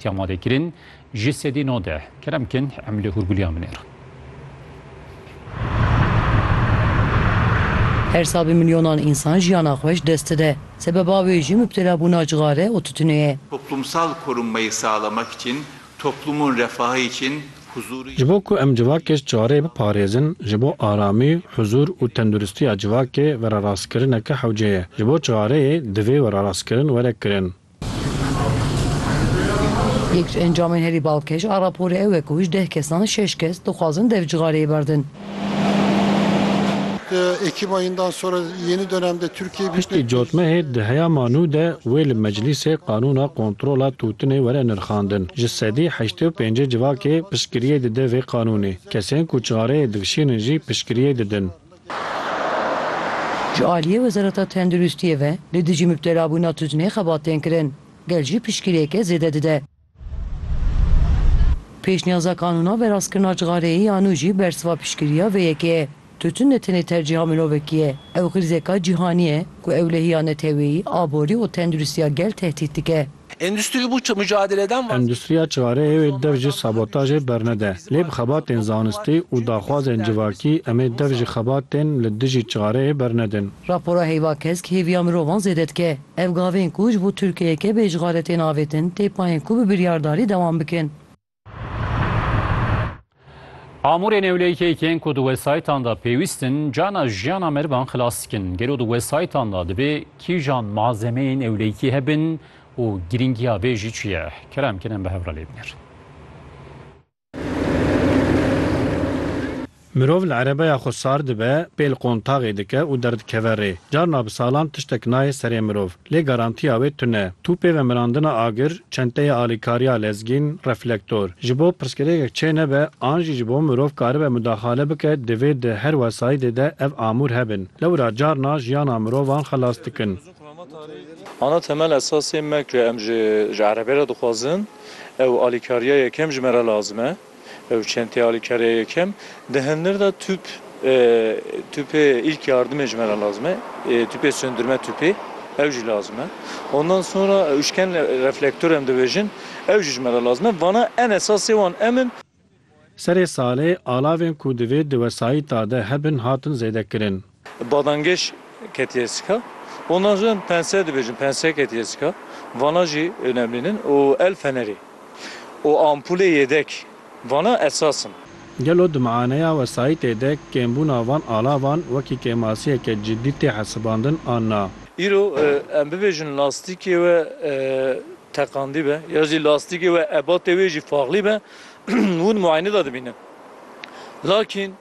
Ti amade kirin ji sedî nodeh. Kerem kin em li Hurguliyan binêrin. Her sal bi milyonan însan jiyana xwe ji dest dide. Sebeba wê jî mubtelabûna cixare û tutinê ye. Toplumsal korunmayı sağlamak için, toplumun refahı için huzuru. Ji bo ku em civakê ji çarê biparêzin, ji bo aramî, huzur û tenduristiya civakê verarastkirineke hewce ye. Ji bo çareyê divê werarastkirin were kirin. Yek ji encamên herî balkêş a raporê ew e ku ji deh kesan şeş kes dixwazin dev cixareyê berdin. Piştî cotmehê di heya ma nû de wê li meclîsê qanûna kontrola tûtinê were nirxandin. Ji sedî heştê û pêncê civakê piştgiriyê dide vê qanûnê. Kesên ku çixareyê dikişînin jî piştgiriyê didin. Ji aliyê Wezareta Tenduristiyê ve li dijî mibtelabûna tuzînê xebat tên kirin, gel jî piştgirêke zêde dide. Pêşniyaza Kanûna Verastkirina Cixareyê ya nû jî bersiva piştgiriya vê yekê ye. Tuzîn ne tenê tercîha mirovekî ye, ew xrizeka cîhanî ye ku ewlehiya neteweyî, aborî û tenduristiya gel tehdît dike. Endüstri bu mücadeleden vazgeçmeli. Endüstriya çareyê wê dev ji sabotajê bernede. Lê bi xebatên zanistî û daxwazên civakî em ê dev ji xebatên li dijî çareyê bernedin. Rapora heyva kesk hêviya mirovan zêde dike. Ev gavên ku ji bo Tirkiyeyeke bê işxale tên avêtin tê payên ku bi biryardarî dewam bikin. Amûrê newlêkê yên ku di wesayîtan de pêwîst in cana jiyana merivan xilas dikin. Gelo di wesayîtan de dibê kîjan malzemeyên ewlêkî hebin û girîngiya vê jî çi ye? Kerem Kenan bi hev re lê binêr. Mirov li erebeya xwe sar dibe, pê li qontaxê dike û derdikeve rê. Carna bi salan tiştek nayê serê mirov. Lê garantiya wê tune. Tûpê vemirandina agir, çenteyê alîkariya lezgîn, reflektor. Ji bo pirsgirêkek çê nebe an jî ji bo mirov karibe mudaxale bike divê di her wesayîdê de ev amûr hebin. Lewra carna jiyana mirovan xelas dikin. Ana temel esasê me ku em ji erebê re dixwazin ew alîkariya yekem ji me re lazim e. Ew çend tê alîkariya yekem. Di hindir de tûp, tûpê îlk yardimê ji me re lazim e, tûpê sundirme tûpê ew jî lazim e. Ondan sonra ûşken reflektor em dibêjin, ew jî ji me re lazim e. Vana en esasê wan em in. Serê salê alavên ku divê di wesayîta de hebin hatin zêdekirin. Badangeş ketiye sika. Ondan sonra pense dibêjin, pense ketiye sika. Vana jî önemlîn in û el fenerê û ampulê yêdek vana esas in. Gelo di mianeya wesayîtê de kêmbûna van alavan wekî kêmasiyeke cidî tê hesibandin an na? Îro em bibêjin lastîkê we teqandî be ya jî lastîkê we ebatê wê jî faxlî be hûn muayenê de dibînin. Lakîn.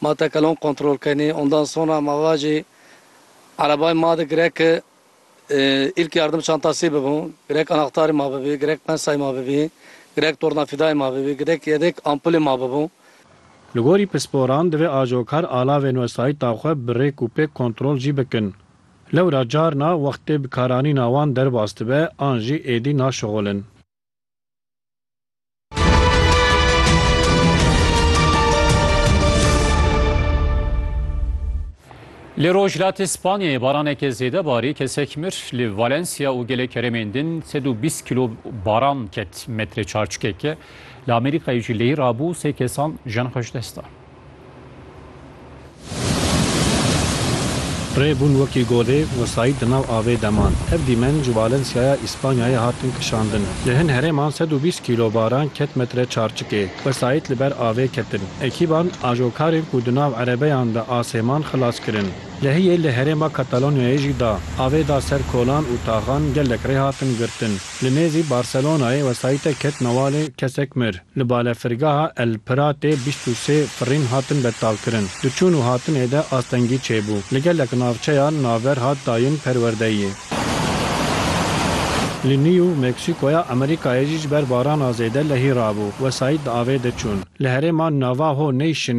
Ma tekelon kontrol kenê, ondan sonra ma vajê erebayê ma de girek ilk yardım çantasê bibû, girek anahtarê ma bibê, girek pensayê ma bibê, girek tornafidayê ma bibê, girek yedek ampulê ma bibû. Li gorî pisporan divê ajokar alavên wesayîta xwe bi rêk û pêk kontrol jî bikin. Lewra carna wextê bikaranîna wan derbas dibe an jî êdî naşixulin. Li rojhilatê Spanyayê baraneke zêde barî kesek mir li Valencia û gelê keremên din 120 kilo baran ket metre çarçikeke li Amerîkayê jî lehî rabû sê kesan jan xweş desta. Rê bûn wekî godê wesayî di nav avê de man. Ev dîmen ji Valenciaya Îspanyayê hatin kişandin. Li hin herêman sed û bîst kîlo baran ket metre çarçikê. Wesayît li ber avê ketin. Ekîban ajokarên ku di nav erebeyan de asê man xilas kirin. Lehiyê li herêma Katalonyayê jî da. Avê da ser kolan û taxan gelek rê hatin girtin. Li nêzî Barcelonayê wesayîte ket newalê kesek mir. Li balefirgeha El Piratê bîst û sê firîn hatin betalkirin. Di çûn û hatinê de astengî çêbû. Li gelek navçeya naver hat dayin perwerdeyê. Li Nîw Meksîkoya Amerîkayê jî ji ber barana zêde lehî rabû, wesayît di avê de çûn. Li herêma Navaho Nation,